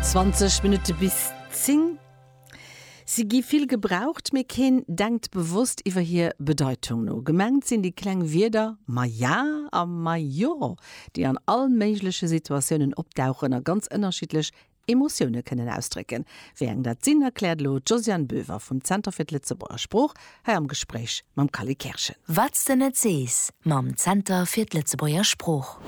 20 Minutte bis 10. Si gi vill gebraucht, mee keen denkt bewosst iwwer hir Bedeitung no. Gemengt sinn déi kleng Wierder ma ja a ma jo, déi an all méigleche Situatiounen opdauchen a ganz ënnerschiddlech Emotioune kënnen ausdrécken. Wéi eng dat sinn, erkläert elo d'Josiane Boever vum Zenter fir d'Lëtzebuerger Sprooch hei am Gespréich mam Kally Kerschen. Wat s de net sees mam Zenter fir d'Lëtzebuerger Sprooch.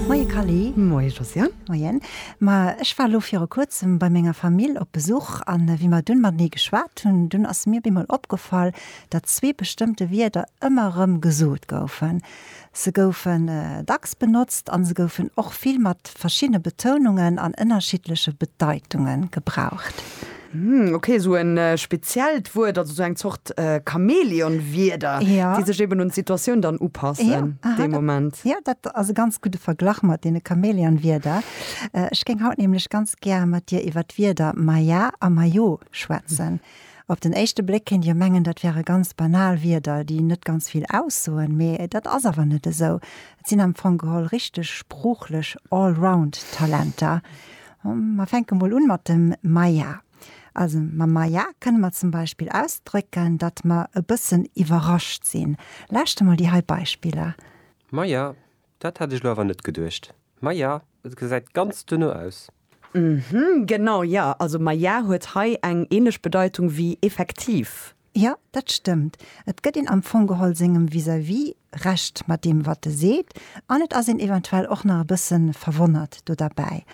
Moie Kally. Moie Josiane. Moien. Ma ech war elo viru kuerzem bei menger Famill op Besuch a wéi mer dunn matenee geschwat hunn, dunn ass mir bemol opgefall, datt zwee bestëmmte Wierder ëmmer erëm gesot goufen. Se goufen dacks benotzt an se goufen och vill mat verschiddene Betounungen an ënnerschiddleche Bedeitunge gebraucht. Ok, esou e speziellt Wuert, also esou eng Zort Chamäleon-Wierder, déi sech eben un d'Situatioun dann upassen dee Moment. Jo, dat ass e ganz gudde Verglach mat deene Chamäleon-Wierder. Ech géing haut nämlech ganz gär mat dir iwwer d'Wierder Maja a Majo schwätzen. Op den éischte Bléck kéint jo mengen, dat wäre ganz banal Wierder, déi net ganz vill aussoen, mee dat ass awer net esou. Et sinn am Fong geholl richteg sproochlech Allround-Talenter. Mer fänke mol un mat dem Maja. Also mam Maja kënne mer zum Beispill ausdrécken, datt mer e bëssen iwwerrascht sinn. Lauschte mol déi hei Beispiller. Maja, dat hat ech lo awer net geduecht. Maja, et gesäit ganz duerno aus. Mhh, genau, jo, also maja huet hei eng ähnlech Bedeitung wéi effektiv. Jo, dat stëmmt. Et gëtt een am Fong geholl sengem Vis-à-vis Recht mat deem, wat e seet, an et ass een eventuell och nach e bësse verwonnert do derbäi.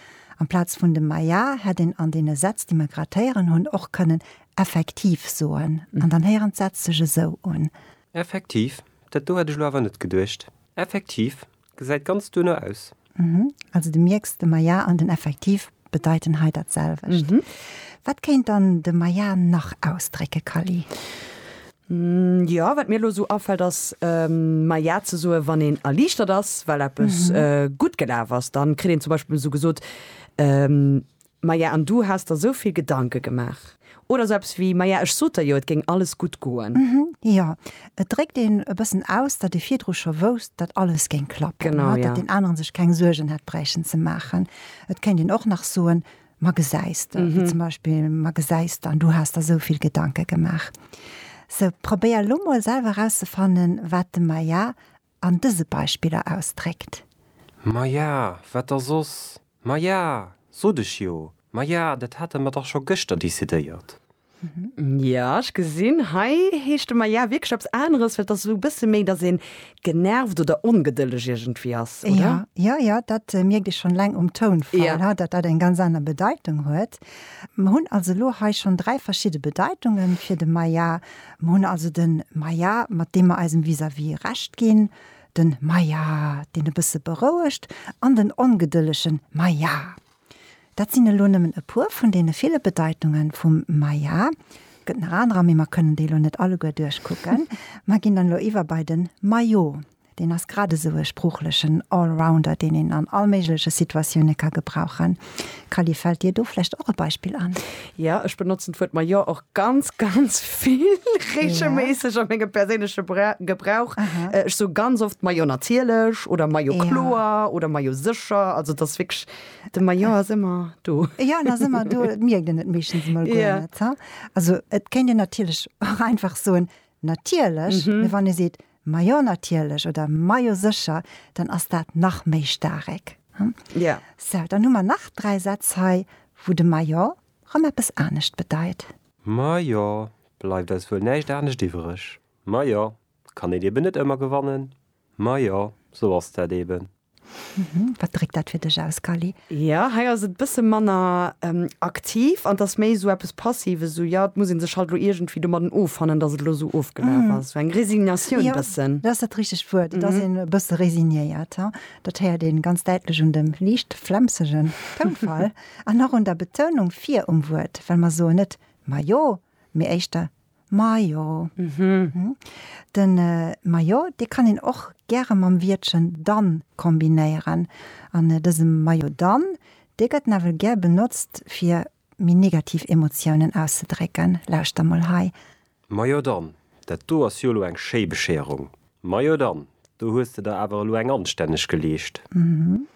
Amplaz vun dem maja hätt een an deene Sätz, déi mer grad héieren hunn, och kënnen effektiv soen. An dann héieren d'Sätz sech esou un. Effektiv, dat do hätt ech elo awer net geduecht. Effektiv, Gesäit ganz duerno aus. Mhm. Also de mierks, de maja an den effektiv bedeiten hei dat selwecht. Mhm. Wat kéint dann de maja nach ausdrécke, Kally? Jo, wat mir elo esou afält ass maja ze soe wann een erliichtert ass, well eppes gutt gelaf ass. Dann kritt een zum Beispill esou gesot, Maja, an du has der sou vill Gedanke gemaach? Oder sou eppes wéi, Maja, ech sot der jo, et géing alles gutt goen. Hm, jo. Et dréckt een e bëssen aus, datt ee virdru scho wousst, datt alles géing klappen, datt deen aneren sech keng Suergen hätt bräichen ze maachen. Et kéint een och nach soen, Ma gesäis de, wéi zum Beispill, Ma gesäis de, an du has der sou vill Gedanke gemaach. Sou, probéier elo mol selwer erauszefannen, wat dem Maja an dëse Beispiller ausdréckt. Ma ja, wat da soss? Ma ja, sot ech jo. Ma ja, dat hate mer dach scho gëschter decidéiert. Ja, ech gesinn, hei heescht de Ma ja wierklech eppes aneres, well et ass esou e bësse méi, datt ee genervt oder ongedëlleg iergendwéi ass, oder? Jo, jo, dat mierkt ee schonn eleng um Tounfall, datt dat eng ganz aner Bedeitung huet. Mer hunn also elo hei schonn dräi verschidde Bedeitungen fir de Ma ja. Mir hunn also den Maja, mat deem mer eisem Vis-à-vis Recht ginn, den Maja, deen e bësse berouegt, an den ongedëllegen Maja. Dat sinn elo nëmmen e puer vun deene ville Bedeitunge vum Maja. Et gëtt nach anerer, mee mer kënnen déi elo net alleguer duerchkucken. Mer ginn dann elo iwwer bei den Majo. Deen ass grad esou e sproochlechen Allrounder, deen een an all méigleche Situatioune ka gebrauchen. Kally, fält dir do vläicht och e Beispill an? Jo, ech benotzen d'Wuert ma jo och ganz, ganz vill, reegelméisseg a mengem perséinleche Gebrauch. Ech soe ganz oft ma jo natierlech oder ma jo kloer oder ma jo sécher. Also et ass wierklech, de ma jo ass ëmmer do. Jo, en ass ëmmer do, et mierkt een et meeschtens emol guer net. Also et kéint een natierlech och einfach soen natierlech, mee wann ee seet Majo natierlech oder Majo sécher, dann ass dat nach méi staarek. Ja. Sou, dann hu mer nach dräi Sätz hei, wou de Majo rëm eppes anescht bedeit. Majo, bleift eis wuel näischt anescht iwwereg. Majo, kann een eben net ëmmer gewannen. Majo, sou ass dat eben. Mhm. Wat dréckt dat fir dech aus, Kali? Jo, hei ass et bësse manner ähm, aktiv an dass méi esou eppes Passives, esou jo, et muss ee sech halt elo iergendwéi domadden offannen, dass et elo esou ofgelaf ass. Esou eng Resignatioun Jo, bëssen. dat ass dat richtegt Wuert. Et ass een e bësse resignéiert. He, dat héiert een ganz däitlech un dem liicht flemsegen Tounfall an och un der Betounung vir um Wuert, well mer soen net majo, mee éischter Majo. Mhm. Den Majo, dee kann een och gäre mam Wiertchen dann kombinéieren. An dëse Majo dann, dee gëtt nawell gär benotzt, fir méi negativ Emotiounen auszedrécken. Lauschter mol hei. Majo dann, dat do ass jo elo eng schéi Bescherung. Majo dann, do hues de der awer elo eng anstänneg geleescht. Hm,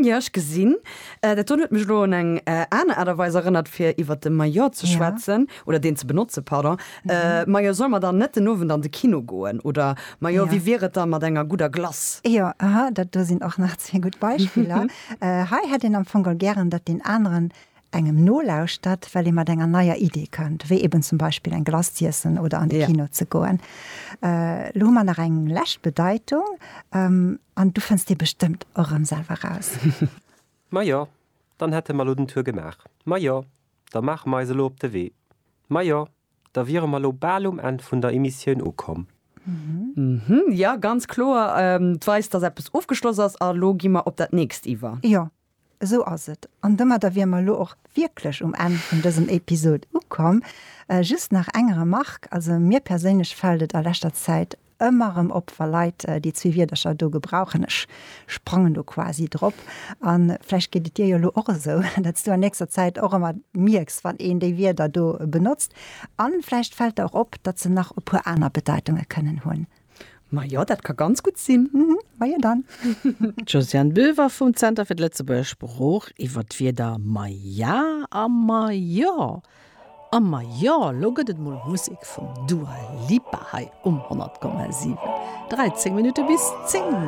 jo, ech gesinn dat. Dun huet mech elo un eng aner Aart a Weis erënnert fir iwwer de Maillot ze schwätzen, oder deen ze benotze, pardon. Majo, solle mer dann net den Owend an de Kino goen? Oder majo, wéi wier et da mat enger gudder Glace? Jo, aha, dat do sinn och nach zwee gutt Beispiller. Hei hätt een am Fong gären, datt deen aneren engem nolauschtert, well ee mat enger neier Idee kënnt, wéi eben zum Beispill eng Glace z'iessen oder an de Kino ze goen. Elo hu mer nach eng lescht Bedeitung an du fënns déi bestëmmt och erëm selwer raus. Majo, dann hätte mer elo den Tour gemaach. Majo, da maache mer eis elo op de Wee. Majo, da wiere mer elo bal um Enn vun der Emissioun ukomm. Jo, ganz kloer, 't weist, dass eppes ofgeschloss ass a lo gi mer op dat nächst iwwer. Jo, Esou ass et. An domadder wier mer elo och wierklech um Enn vun dësem Episod ukomm. Just nach eng Remarque, Also mir perséinlech fält et a leschter Zäit ëmmer erëm op, wa Leit déi zwee Wierdercher do gebrauchen, ech sprangen do quasi drop. A vläicht geet et dir jo elo och esou, datt s du an nächster Zäit och ëmmer mierks, wann een déi Wierder do benotzt. A vläicht fält der och op, datt se nach e puer aner Bedeitunge kënnen hunn. Majo, dat ka ganz gutt sinn. Mhm, majo dann. D'Josiane Boever vum Zenter fir d'Lëtzebuerger Sprooch iwwer d'Wierder maja a majo. A majo, lo gëtt et mol Musek vum Dua Lipa hei um 100,7. 13 Minutte bis 10!